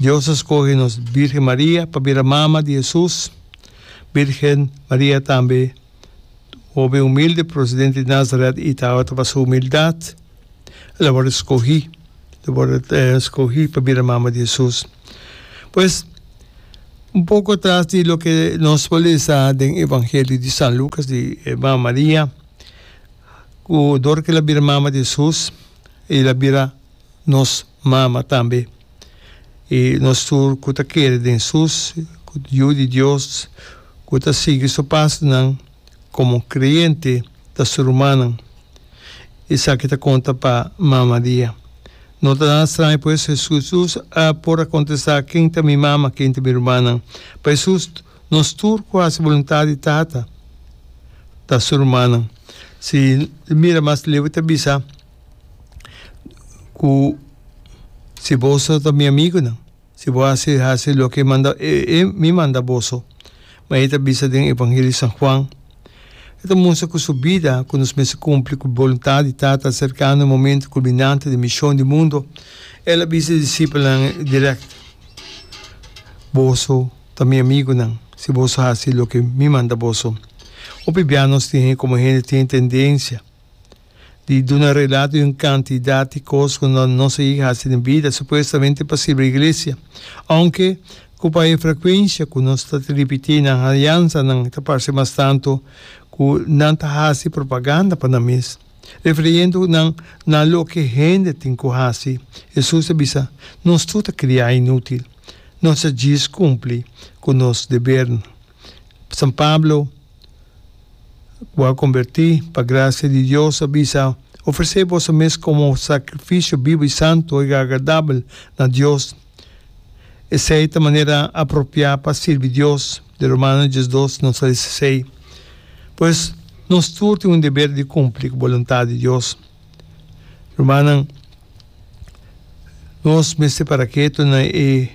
Dios a scoge nos Virgen Maria pa bira mama di Hesus. Virgen Maria tambe hoben humilde, procedente di Nazaret y tawata ta pa su humildad el a worde scogi, el a worde scogi pa bira mama di Hesus. Pues un poco atras di loke nos por lesa den Evangelio di San Lucas di e mama Maria cu dor cu el a bira mama di Hesus y el a bira. nos mama tambe. I nos tur ku ta kere den sus ku Yu di Dios ku ta sigui su pasonan komo kreyente ta su rumannan. Esaki ta konta pa mama di e. No ta nada straño pues, Hesus a por a kontestá, Ken ta mi mama, ken ta mi rumannan? Pa Hesus, nos tur ku hasi boluntat di Tata ta su rumannan. Si mira mas leu e ta bisa. cu si boso ta mi amigunan, si bo haci, haci loke e manda, e, e mi manda boso. Ma e ta bisa den Evangelio di San Juan, e ta mustra cu su bida, cu nos mester cumpli cu boluntad di Tata, acercando e momento culminante di mision di mundo. El a bisa e disipelnan directo, Boso ta mi amigunan, si boso haci loke mi manda boso. Hopi bia nos tin, como hende tin tendencia, di duna relato di un kantidat di kos ku no nos a yega hasi den bida, supuestamente pa sirbi iglesia. Ounke ku pa e frekuensia ku nos ta ripití nan haliansanan ta parse mas tantu ku nan ta hasi propaganda pa nan mes, refiriendo nan na loke hende tin ku hasi, Hesus a bisa, Nos tur ta kriá inútil. Nos ta djis kumpli ku nos debernan. San Pablo. ku a kombertí pa grasia di Dios, a bisa, Ofresé boso mes komo sakrifisio bibu i santu, e agradabel na Dios. Esei ta manera apropiá pa sirbi Dios, de Romanos dies dos nos a lesa esei. Pues, nos tur tin un deber di kumpli ku boluntat di Dios. Rumannan, nos mester para ketu na e.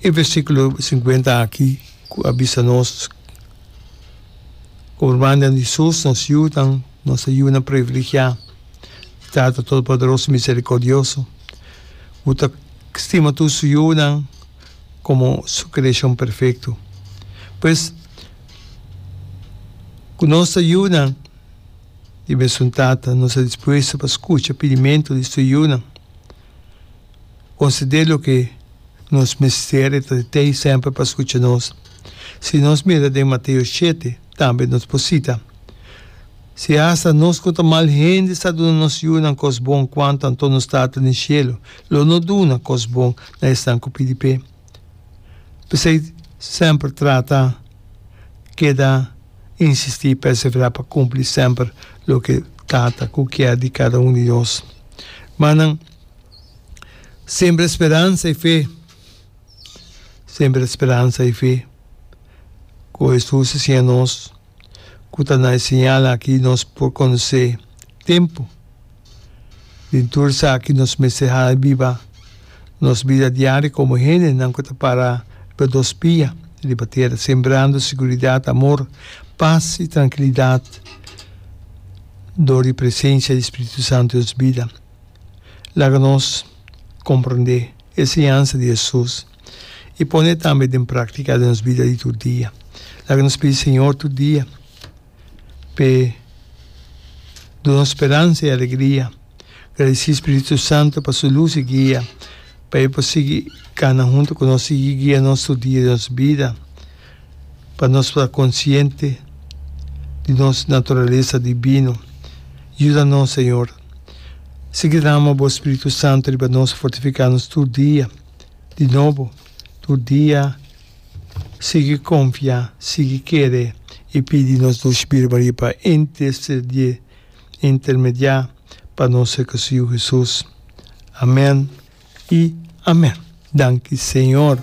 E versikulo sinkuenta aki ku a bisa nos ku urmannan di sus, nos yunan, nos e yunan priviligiá di Tata Todopoderoso i Miserikordioso ku ta stima tur su yunan komo su kreashon perfekto. Pues, ku nos ta yunan di e mesun Tata, nos ta dispuesto pa skucha pidimentu di su yunan. o si de loke nos mester e ta di t'ei semper pa skucha nos. Si nos mira den Mateo shete tambe nos por sita, Si hasta nos ku ta mal hende sa duna nos yunan kos bon, kuantu anto nos Tata den Shelu lo no duna kos bon na esnan ku pidi p'e! P'esei semper trata keda. insistí i perseverá pa kumpli semper loke Tata ku kier di kada un di nos. Má nan sembra speransa i fe, sembra speransa i fe, ku Hesus a siña nos, ku ta na e señal aki nos por konosé tempu. Den tur esaki nos mester hala biba nos bida diario komo hendenan ku ta para riba dos pia riba tera, sembrando seguridat, amor, pas i trankilidat dor di presensia di spiritu santu den nos bida. Laga nos komprondé e enseñansa di Hesus i pon'é tambe den práktika den nos bida di tur dia. Laga nos pidi Señor tur dia. p'e duna speransa i alegria. Gradisí Spiritu Santu pa su lus i guia, pa e por sigui kana huntu ku nos, sigui guia nos tur dia di nos bida, pa nos por a konsiente di nos naturalesa dibino. Yuda nos, Señor. Sigui drama Bo Spiritu Santu riba nos, fortifiká nos tur dia di nobo. tur dia sigui konfia, sigui kere i pidi nos Dulce Birbarie pa intercedié, intermediá, pa nos e Su Yu Hesus. Amén i amén. Danki Señor.